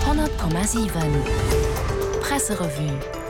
100,7 Presserevue.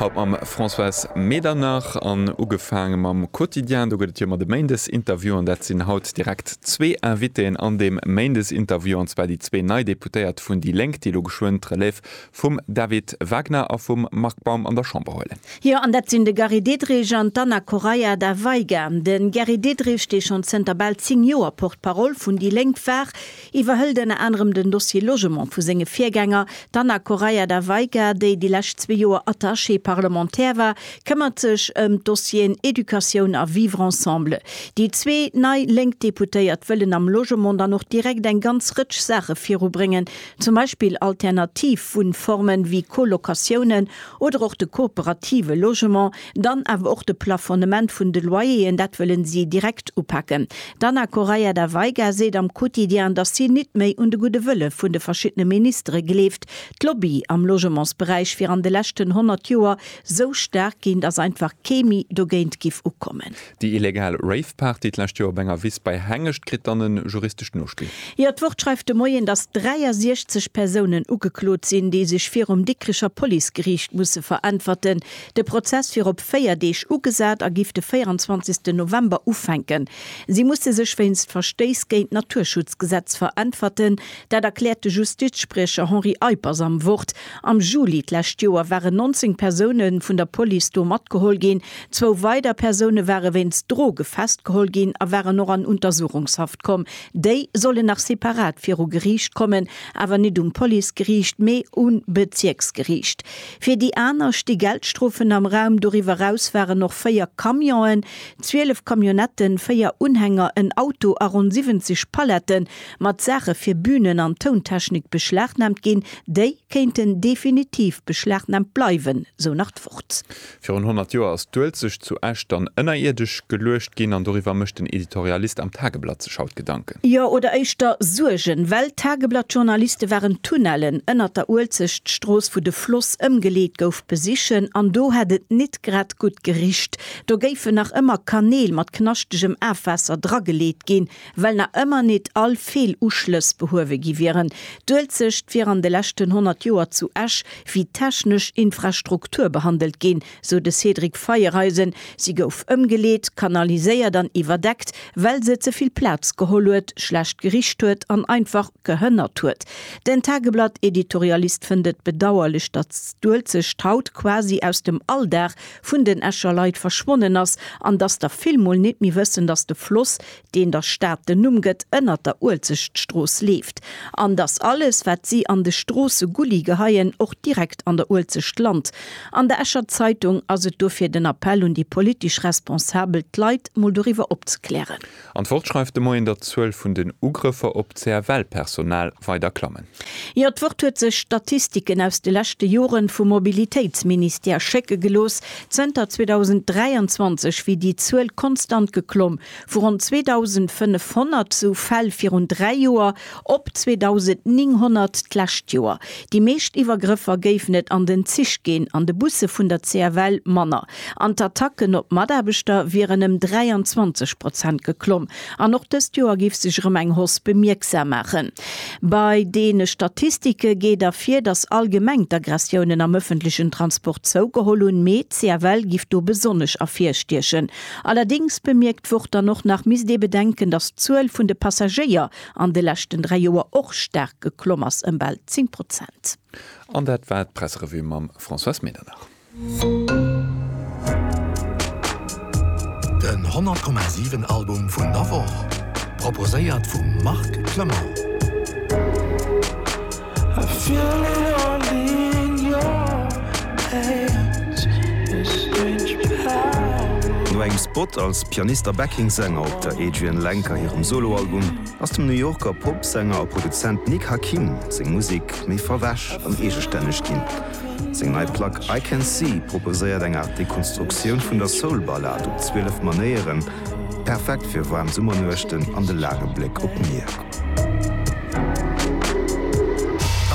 Haut mam Françoise Medernach an ugefaange mam Quotidien. Do gëtt et jo ëmmer de Méindesinterview an dat sinn haut direkt zwee Invitéen an deem Méindesinterview, an zwar déi zwee nei Deputéiert vun déi Lénk, déi elo geschwënn d'Relève vum David Wagner a vum Marc Baum an der Chamber huelen. Jo, an dat sinn de Gary Diderich an d'Anna Correia da Veiga. De Gary Diderich, dee schonn zënter bal zéng Joer Porte-parole vun déi Lénk war, iwwerhëlt ënner anerem den Dossier Logement vu senge Virgänger, d'Anna Correia da Veiga, déi déi lescht zwee Joer Attachée parlementaire war, këmmert sech ëm d'Dossieren Educatioun a Vivre ensemble. Déi zwee nei lénk Deputéiert wëllen am Logement dann och direkt eng ganz Rëtsch Saache virubréngen, zum Beispill alternativ Wunnformen, wéi Colocatiounen oder och de kooperative Logement, Dann awer och de Plafonnement vun de Loyeren, dat wëllen si direkt upaken. D'Ana Correia da Veiga seet am Quotidien, datt si nit méi un de gudde Wëlle vun de verschiddene Ministere gleeft. D'Lobbye am Logementsberäich wier an de leschten 100 Joer sou staark ginn, datt einfach kee méi dogéint giff ukommen. Déi illegal Rave-Party d'lescht Joer op enger Wiss bei Hengescht kritt dann e juristescht Nospill. Jo, d'Wort schreift de Moien, datt 63 Persounen ugeklot sinn, déi sech virum Dikricher Policegeriicht musse veräntwerten. De Prozess wier op 4 Deeg ugesat a giff de 24 November ufänken. Si musse sech wéinst Verstéiss géint d'Naturschutzgesetz veräntwerten. Dat erkläert de Justizspriecher Henri Eippers am Wort. Am Juli d'lescht Joer waren 19 Persoune vun der Police do matgeholl ginn. Zwou weider Persoune ware wéinst Droge festgeholl ginn a waren och an Untersuchungshaft komm. Déi sollen nach separat viru Geriicht kommen, awer net um Policegeriicht, mee um Bezierksgeriicht. Fir déi aner sti Geldstrofen am Raum. Doriwwer eraus waren och véier Camionen, zwielef Camionnetten, véier Unhänger, en Auto a ronn 70 Pallette mat Saache fir Bünen an Tountechnik beschlagnaamt ginn. Déi kéinten definitiv beschlagnaamt bleiwen, sou nach d'Wort. Virun 100 Joer ass d'Uelzecht zu Esch dann ënnerierdesch geluecht ginn an doriwwer mécht den Editorialist am Tageblatt sech haut Gedanken. Jo, oder éischter Suergen, well d'Tageblatt-Journaliste waren d'Tunnellen ënnert der Uelzechtstrooss, wou de Floss ëmgeleet gouf, besichen an do hätt et nit grad gutt gericht. Do géifen nach ëmmer Kanäl mat knaschtegem Afwaasser drageleet ginn, well nach ëmmer nit all Feeluschlëss behuewe gi wieren. D'Uelzecht wier an de leschten 100 Joer zu Esch wéi technesch Infrastruktur behandelt ginn, sou de Cédric Feiereisen. Si gouf ëmgeleet, kanaliséiert an iwwerdeckt, well se ze vill Plaz geholl huet, schlecht gericht huet an einfach gehënnert huet. Den Tageblatt-Editorialist fënnt et bedauerlech, datt d'Uelzecht haut quasi aus dem Alldag vun den Escher Leit verschwonnen ass an datt der vill mol net méi wëssen, datt de Floss deen der Stad den Numm gëtt, ënnert der Uelzechtstrooss leeft, an datt alles, wat si an de Stroossegulli geheien, och direkt an der Uelzecht lant. An der Escher Zeitung ass et dofir den Appell un déi politesch Responsabel, d'Leit mol doriwwer opzeklären. An d'Wort schreift de Moien, datt d'Zuel vun den Ugrëffer op d'CFL-Personal weider klammen. Jo, d'Wort huet sech Statistiken aus de leschte Jore vum Mobilitéitsministère schécke gelooss. Zënter 2023 wier déi Zuel konstant geklomm. vu ronn 2.500 sou Fäll virun dräi Joer op 2.900 d'lescht Joer. Déi meescht Iwwergrëffer géifen et an den Zich ginn, an de Busse vun der CFL manner. An d'Attacken op Mataarbechter wieren ëm 23 Prozent geklomm. An och dëst Joer géif sech erëm eng Hausse bemierksam maachen. Bei deene Statistike geet ervir, datt allgemeng d'Aggressiounen am ëffentlechen Transport zougeholl hunn, mee d'CFL giff do besonnesch ervirstiechen. Allerdéngs bemierkt d'Wort dann och nach, misst ee bedenken, datt d'Zuel vun de Passagéier an de leschten dräi Joer och staark geklomm ass, ëm bal 10 Prozent. An dat war d'Presserevue mam Françoise Medernach. Den 100,7 Album vun der Woch proposéiert vum Marc Clement. No engem Spot als Pianist a Backing Sänger op der Adrianne Lenker hirem Soloalbum ass dem New Yorker Popsänger a Produzent Nick Hakim seng Musek méi verwäsch an eegestänneg ginn. Seng nei Plack I Can See proposéiert eng Aart Dekonstruktioun vun der Soul-Ballad op 12 Manéieren, perfekt fir waarm Summernuechten an de laange Bléck op d'Mier.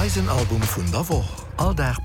Eisen Album vun der Woch, all Dag.